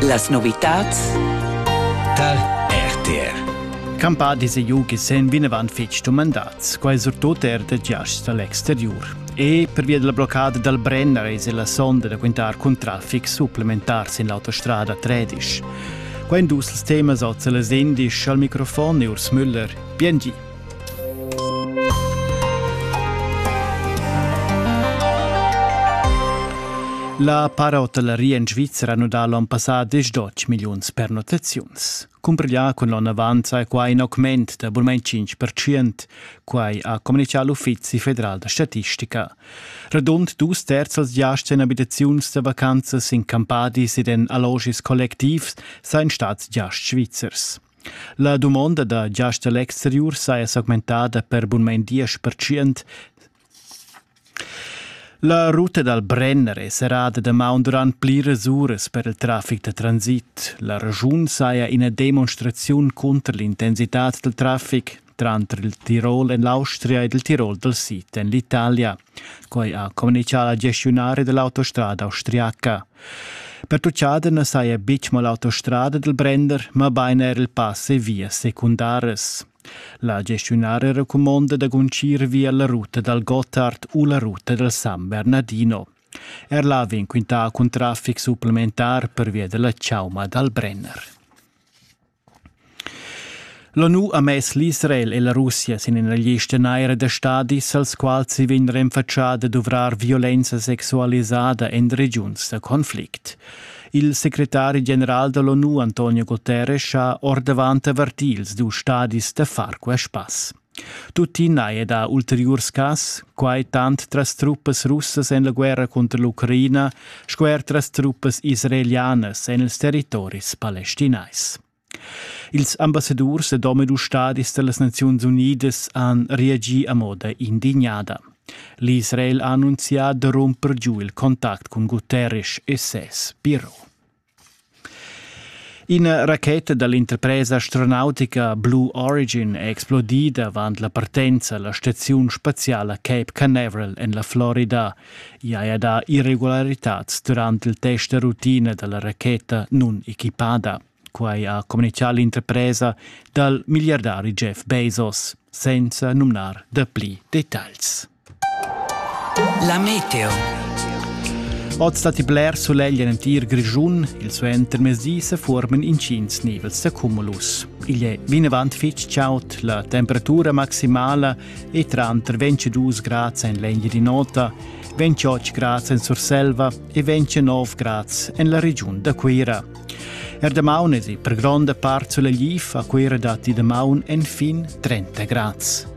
Las novitads tar RTR. Campà dise ju che sen vinevan fitg dumandats, quai surtut er de giasts dall'exteriur. E per via della bloccada dal Brenner es la sonda da quintar cun traffic supplementar sin l'autostrada 13. Qua in dus temas oz las indisch al microfon e Urs Müller. Bien gi. La parotelleria in Svizzera nu dà l'on passà desdotg milliuns pernottaziuns. Cumbriglià cun l'on avant sai quai in augment da bulmain 5%, quai ha communichà l'Uffizi federal da statistica. Radund dus terzels giasts en abitaziuns da vacanzas in campadis ed en allogis collectivs sain stats giasts svizzers. La dumonda da giast da l'exteriur saja s'augmentada per bunmain diesch percent. La ruta dal Brenner è serrada damaun durant pliras uras per il traffic da transit. La regiun saja ina demonstraziun cunter l'intensitad dal traffic. tranter il Tirol en l'Austria ed il Tirol dal sid en l'Italia. Quai ha communitgà la gestiunaria dell'autostrada austriaca. Pertuccada na saja betg mo l'autostrada del Brender, mabain er il pass e vias secundaras. La gestiunaria recumonda da guncir via la ruta dal Gotthard u la ruta dal San Bernardino. Er là vegn quintà cun traffic supplementar per via della Chauma dal Brenner. L'ONU ha mess l'Israel e la Russia sin ina lista naira da stadis, als quals si vegn renfatschà da duvrar violenza sexualisada en regiuns da conflict. Il secretari general da l'ONU Antonio Guterres ha ordavant avertì ils dus stadis da far quest pass. Tuttina è dà ulteriurs cas, quai tant tras truppas russas en la guerra cunter l'Ucraina sco er tras truppas israelianas en ils territoris palestinais. Ils ambassadurs ed omadus stadis da las Naziuns Unidas han reagì a moda indignada. L'Israel ha annunzià da rumper giu il contact cun Guterres e ses biro. Ina racheta da l'interpresa astronautica Blue Origin è explodida avant la partenza a la staziun spaziala Cape Canaveral en la Florida. I haja dà irregularitads durant il test da rutina da la racheta nun-equipada. Quai ha communitgà l'interpresa dal milliardari Jeff Bezos, senza numnar dapli detagls. La meteo. Oz datti bler sulegl en entir Grischun. Il suentermezdi se formen intgins nivels da cumulus. Igl è vinavant fitg chaud, la temperatura maximala è tranter 22 grads en l'Engiadin'Ota, 28 grads en Surselva e 29 grads en la regiun da Cuira. Er damaun è per gronda part sulegliv, a Cuira datti damaun enfin 30 grads.